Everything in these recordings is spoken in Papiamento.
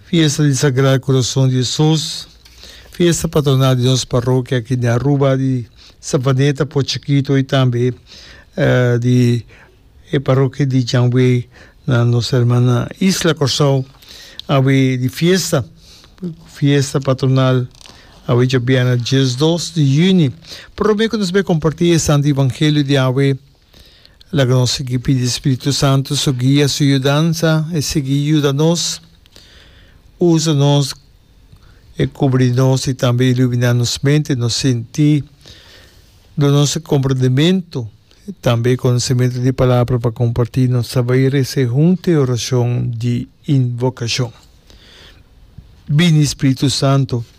Fiesta di Sagrado Corazon di Jesus, fiesta patronal di nos parrokia aki den Aruba, di Savaneta, Port Chikito y tambe di e parrokia di Janway na nos herman na Isla Corsou awe di fiesta, fiesta patronal awe djobiana dies dos di juni. Prome cu nos bai comparti e Santo Evangelio di awe. Laga nos sigui pidi Spiritu Santu su guia, su yudansa. E sigui yuda nos, usa nos, e kubri nos i tambe iluminá nos mente, nos sintí, duna nos e komprendementu i tambe e konosementu di e Palabra pa kompartí. Nos ta bai rese huntu e orashon di invokashon, Bini Spiritu Santu!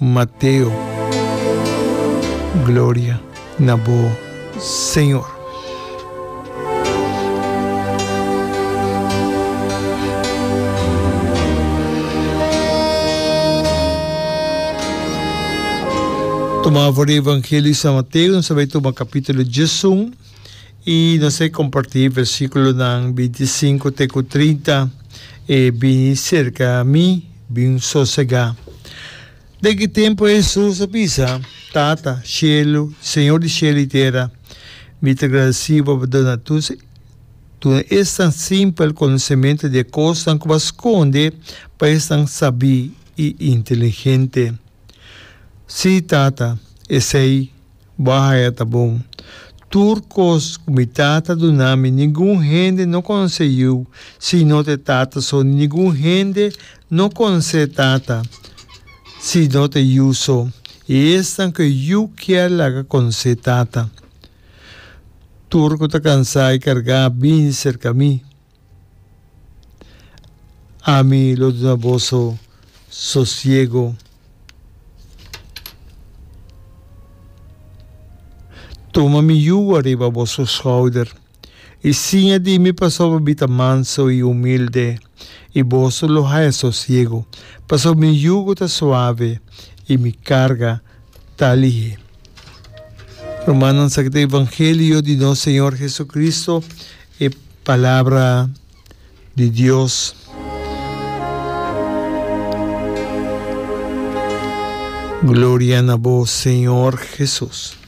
Mateo. Gloria na bo, Señor. Tuma for di Evangelio di San Mateo, nos a bay tuma capitulo diesun. I nos a compartí versículonan binti i sinku te ku trinta, E bini serka mi, bin sosegá. Den ki tempu Hesus a bisa, Tata, shelu, Señor di shelu i tera, mi ta gradesí bo pa duna tus duna esnan simpel konosementu di e kosnan ku bo a skonde pa esnan sabí i inteligente. Sí, Tata, esei. Bo a haya ta bon. Tur cos cu mi tata duna mi ningun hende no conse yu si no te tata so ni ningun hende no conse tata si no te yu so y esnan cu e yu kier laga conse tata. Tur cu ta cansa y carga bini cerca mi. Ami lo duna boso sosiego. Tuma mi yugo riba boso schouder, i siña di mi pasobra mi ta manso i humilde, i boso lo haya sosiego, pasobra mi yugo ta suave i mi karga ta lihé. Rumannan, sa ki ta evangelio di nos Señor Jesucristo. E palabra di Dios. Gloria na bo Señor Jesus.